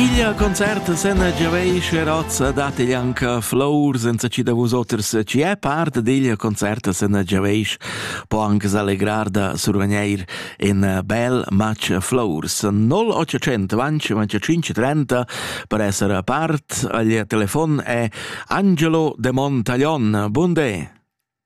Igl concert sen giaveisch razza dat igl anca flour senza ci da vusoters ci è part digl concert sen giaveisch po anche s'allegrar da survegneir in bel match flours 0800 vanci vanci 530 per essere part agl telefon è Angelo de Montaglion Bunde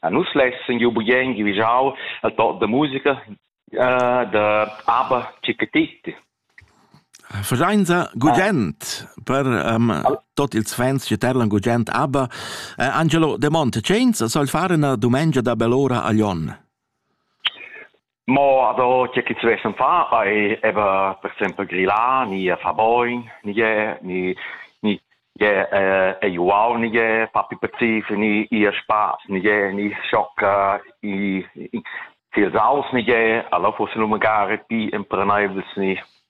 A nus lessan giu bugen givigiau al toc da musica uh, da ABBA Chickatitti. Fasainza gugent per um, tot ils fans che terlan gugent ABBA. Uh, Angelo De Monte, cenza soll fare una dumengia da bell'ora a Lyon? Mo ado che ch'ins vessen far ei eben per exempel grillar ni far bogn ni gie ni ni gie ei uau ni gie far più pazis ni ir spass ni gie ni schocca i i tiels aus ni gie alla fuss lu magari pi empreneibles ni